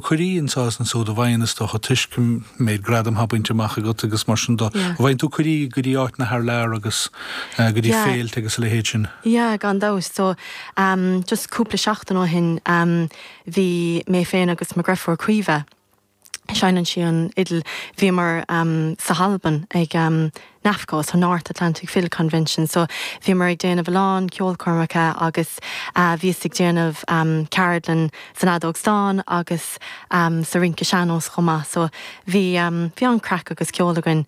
Cuirí anso is ansúd a bhfaigheann is dócha toisc an méid gradam thá bainte amach agat agus mar sin go Yeah. bhfaigheann tú cuirí go dtí áiteanna thar lear agus eh, go dtí Yeah. féilte agus a leithéid sin. Yeah, gan dabht. So, um, just cúpla seachtain ó shin, um, bhí mé féin agus mo dheirfiúr Caoimhe, seineann sí an fhidil, bhíomar, um, sa hAlbain ag, um, NAFCo, so North Atlantic Fiddle Convention, so bhíomar ag déanamh a lán ceolchoirmeacha agus bhíos ag déanamh ceardlann san fheadóg stáin agus sa rince sean-nós chomh maith so bhí bhí an-craic agus ceol againn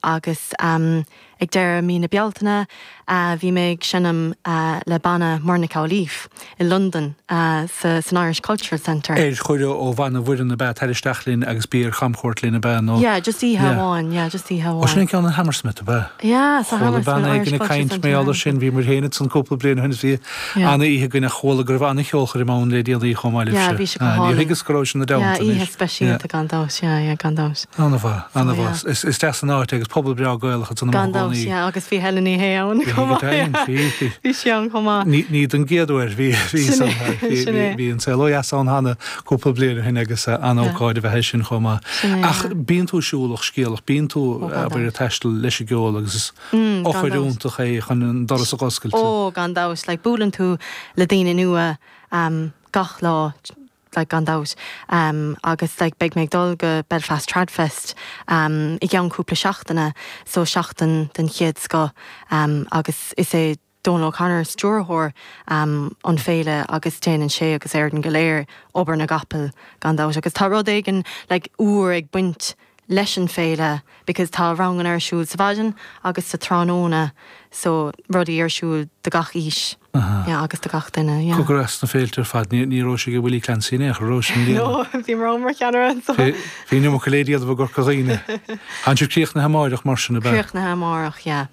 agus ag deireadh mí na Bealtaine Bhí mé ag seinm le banna Muireann Nic Amhlaoibh i Londain san Irish Cultural Centre. Ar chuireadh ó bhanna Mhuireann ab ea, Tar isteach linn agus bí ar chamchuairt linn ab ea nó? Yeah, just oíche amháin, yeah, just oíche amháin. Ó, sin an ceann in Hammersmith ab ea? Yeah, sa Hammersmith Irish Cultural Centre. Chuala bean éigin ag caint mar gheall air sin, bhíomar féin ansan cúpla bliain ó shin is bhí, An-oíche againn ach chuala go raibh an-cheolchoirm ann le déanaí chomh maith libhse. Yeah, bhí sé go hálainn. Níor thuigeas go rabhais-se ina dteannta anois. Yeah, oíche speisialta gan dabht, yeah, yeah, gan dabht. An-mhaith, an-mhaith. Is deas an áit é agus pobal breá Gaelacha de na Gan dabht, Mhór-Dhúnaí. yeah, agus bhí Helen Ní Shé ann Bhí chomh Helen maith. Ní Shé ann, bhí. Bhí sí ann chomh maith. Ní, ní den gcéad uair, bhí, bhí Sin san, é, bhí, sin bhí, é. bhí An Saol ó Dheas ann cheana cúpla bliain ó shin agus an-ócáid ab ea í sin chomh maith. Sin é, Ach yeah. bíonn tú siúlach, scéalach, bíonn tú, Oh, gan abair, ag dabht. taisteal leis an gceol agus is, eochair fhiúntach é chun an doras a oscailt. Ó, gan dabht, like buaileann tú le daoine nua ehm gach lá like gan dabht ehm agus like beidh mé ag dul go Belfast Tradfest ehm i gceann cúpla seachtaine so seachtain den chéad scoth ehm agus is é Dónal O'Connor, stiúrthóir an féile agus déanann sé agus an fhoireann go léir obair na gcapall gan dabht agus tá rud éigin like úr ag baint leis an féile because tá ranganna ar siúl sa mhaidin agus sa tráthnóna so rudaí ar siúl do gach aois yeah agus do gach duine yeah. Cogar as na féilte ar fad, ní ní rabhais ag Willie Clancy in aon chor an rabhais i mbliana. No, bhí mná mar cheannaire anso. Bhí bhí an iomarca le déanamh i gCorca Dhuibhne. Tánn sibh ag críochnú amárach mar sin ab ea? Críochnú amárach yeah.